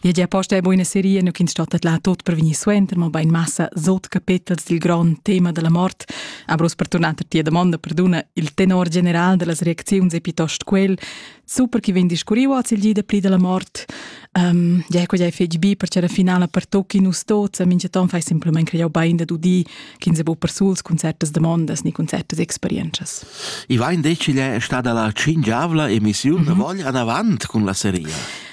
Dir gia posta è buina seria, nu ch'ins stattet là tot per vegnir suenter, ma bain massa sot capitels dil grond tema della mort. Aber per tornar a tia domanda, perduna, il tenor general dellas reacziuns è piuttosto quel, super chi vegn discurriu oz il gi da pli della mort. Um, ja, quella è fetg bi, perché la finala per tocchi nus tots, a minchaton fai simplement creau bain da dudi, ch'ins è bu per suls concertas demandas ni concertas experienzas. I vain detg, igl è stada la cingiavla emissiun mm -hmm. da vogl anavant cun la seria.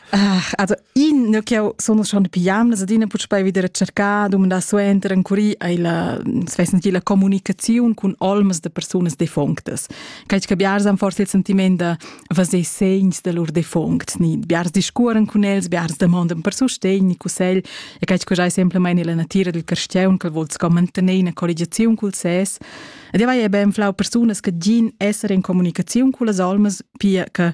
Ah, also i ne ch'eu sun schon pigliam las adina puspei wieder a cercar, dumandar suenter ancuri ai la svesn la comunicaziun cun olmas da persunas defunctas. Cai che biars han forse il sentiment da vaser segns da lur defunct, ni biars discuoran cun els, biars demandan per sustegn ni cussegl, e cai che giai semplamain la natira del cristian che vol sco mantener una colligazione col ses. Ed vai e ben flau persunas che gin essere in comunicazione con las olmas, pia che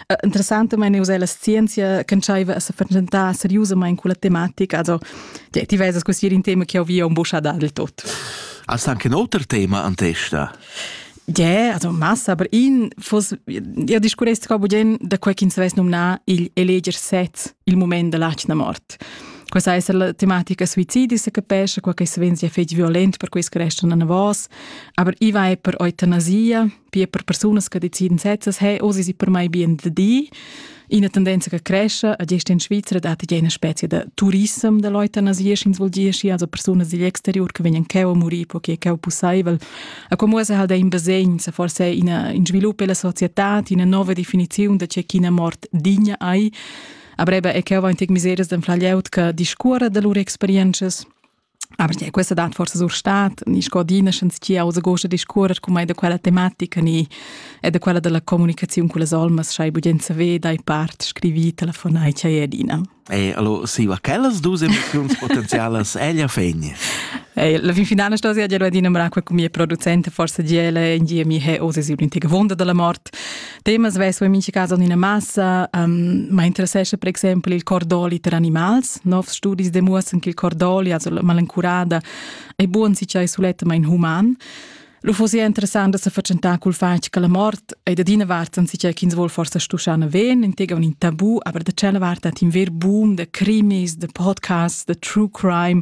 interessantamain uss è la scienzia ch'entschaiva a se fatschentar seriusamain culla tematica. Also, ti vesas così in tema che ho via un buscha dal tot. Hast anche ein otro tema an testa? Yeah, also massa, aber in fos io discurresti qua bugen da quel ch'ins vess nomnar il eleger sez, il moment della da mort. Questa è la tematica suicidi, se capisce, quel che venzi è fetg violent per questo restano a vos, aber i va per eutanasia, wie per persunas che deciden setzes hey oh sie per mai bien de di in tendenza che cresce a gest in Svizzera da eine specie de turism de Leute nas ins ins volgiesci also persunas digl exterior che vegnan cheu a muri po che cheu pussaivel a como se halt in basegn se forse in in sviluppo della società una nuova definizione de c'è china mort digna ai a breve e cheu va in tec miseres den flaglieut che discuora de lur experiences Aber ja, questa dat forse sur stat, ni scodina schens ti aus gosta discuorer cum ei da quella tematica ni e da quella della comunicazione con les olmas schai bugenza ve dai part scrivi telefonai chai edina. E allora si va quellas dus emozioni potenzialas ella fegni. E la fin finale sto sia già adina mra qua con mia producente forse giele in die mi he osi si un'intiga wonda della morte Temas vesu in mincha cas en ina massa, um, ma interessescha per exempel il cordoli per animals. Novs studis demuossan che il cordoli, also la malencurada, è buon si c'è sulettamain human. Lo fosse interessant da se facentà col fatg che la mort è da dina vart si c'è ch'ins vuol forse stuschana ven, intega un in tabù, aber da cella vart hat in ver boom de crimis, de podcasts, de true crime,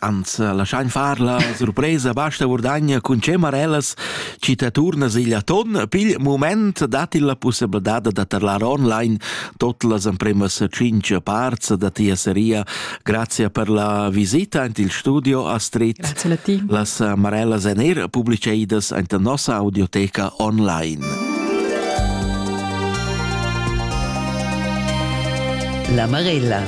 Ans laschain far la surpresa, basta Vurdagna cun cemarellas chi ta turna sigl aton. Pigl mument dat il la pussabladad da tarlar online tot las empremas cinc parts da tia seria. Grazie per la visita ant il studio a Street. Grazie a ti. Las amarellas en er publiceidas ant nossa audioteca online. La Marella.